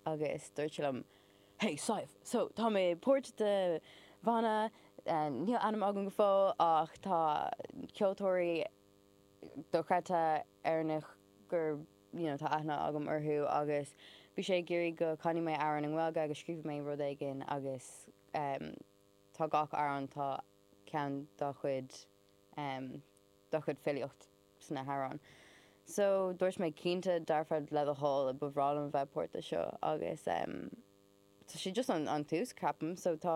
Agus dúirt sé liom, Hey Sadhbh, so tá mé páirt de bhanna, níl ainm agam go fóill ach tá ceoltóirí dochreidte Éireannaigh gur you know tá aithne agam orthu agus bhí sé ag iarraidh go canaidh mé amhrán i nGaeilge agus scríobhadh mé rud éigin agus em tá gach amhrán tá ceann dá chuid em dá chuid filíocht. sna hamhráin so dúirt mé cinnte dearfa le do thoil ba bhreá liom a bheith páirteach seo agus em tá sé just an an tús ceapaim so tá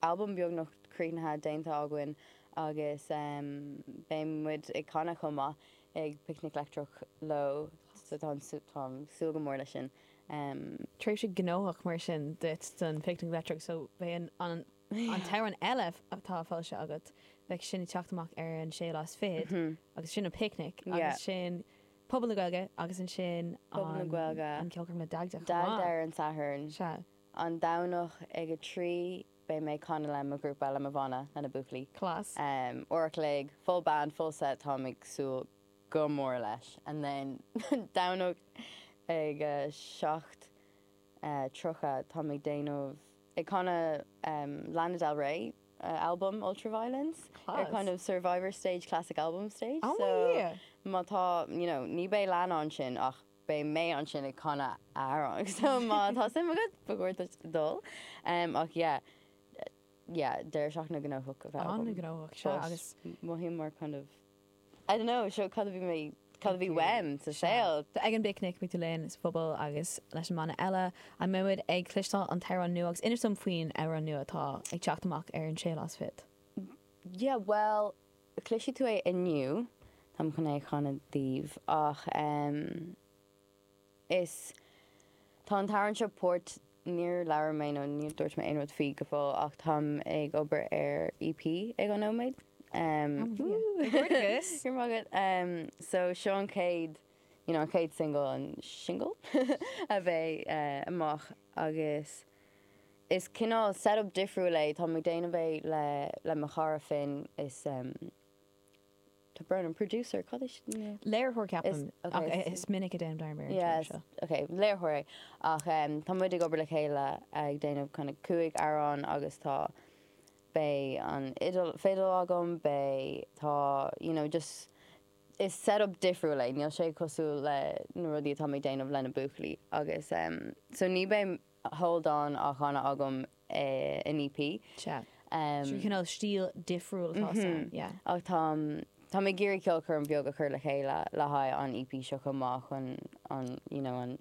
albam beagnach críochnaithe déanta againn agus em beidh muid ag canadh chomh maith ag picnic leictreach leo so táim ag sú táim ag súil go mór leis sin em tréimhse gnóthach mar sin duit don picnic leictreach so beidh an an An t-amhrán eile atá foilsithe agat, beidh sin ag teacht amach ar an sé lá is fichead agus sin an Picnic agus sin Pobal na Gaeilge agus ansin an Ceolchoirm le Dagda chomh maith. Dagda ar an Satharn. Sea. An Satharn ag a trí beidh mé ag canadh le mo ghrúpa, le mo bhanna, le na buachaillí. Class. Uair a chloig, full band, full set, táim ag súil go mór leis. And then Domhnach ag a seacht tríocha táim ag déanamh. ag canadh Lana Del Ray albam Ultraviolence ar kind of survivor stage classic album stage so má tá you know ní beidh Lana ansin ach beidh mé ansin ag canadh a amhrán so má tá suim agat ba chóir dul um, ach yeah yeah deireadh seachtaine gnóthach an-ghnóthach sea agus mothaím mar kind of I don't know, seo cad a bhí mé, cad a bhí uaim sa saol. Ag an bPicnic, beidh tú linn sa Phuball agus leis an mbanna eile An mbeimid ag cloisteáil an t-amhrán nua agus inis dom faoin amhrán nua atá ag teacht amach ar an 6 lá is fichead. Yeah bhuel, cloisfidh tú é inniu, táim chun é a chanadh daoibh ach ehm. Is. Tá an t-amhrán seo páirt. Níor labhair mé nó níor dúirt mé aon rud faoi go fóill ach táim ag obair ar EP ag an nóiméad. Comhghairdeas! Go raibh maith agat. So seo an chéad, you know, an chéad single, an single? a bheidh amach agus is cineál set-up difriúil é. Táim ag déanamh é le mo chara Finn. Is. Is Brennan, producer, cad é sin? Léiritheoir ceapaim, ach is minic a dhéanaim dearmad ar an téarma seo. Yes, ok, léiritheoir é. Ach tá muid ag obair le chéile ag déanamh kind of cúig amhrán agus tá, beidh an fidil agam, beidh, tá, you know, just, is setup difriúil é, níl sé cosúil le na rudaí atáim ag déanamh le na buachaillí. Agus so ní beidh sé lán-bhanna agam An EP. Sea. Trí chineál stíl difriúil atá ann, yeah. Ach tá, tá mé ag iarraidh ceolchoirm bheag a chur le chéile le haghaidh an EP seo chomh maith chun an, you know, an,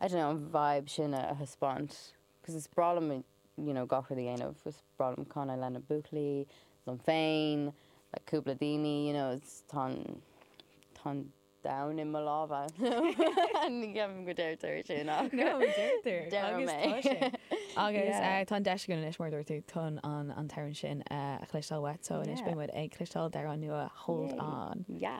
I don't know, an vibe sin a thaispeáint. Cos is breá liom, you know, gach rud a dhéanamh. Is breá liom canadh leis na buachaillí, liom féin, le cúpla daoine, you know, tá an, tá an, Down i mo lámha. Ní cheapaim go ndeirtear sin ach. No, deirtear. Deirim é. Agus tá sé. Agus tá an deis againn anois, mar a dúirt tú, chun an t-amhrán sin a chloisteáil uait. So anois beidh muid ag cloisteáil d'amhrán nua Hold On. Yeah.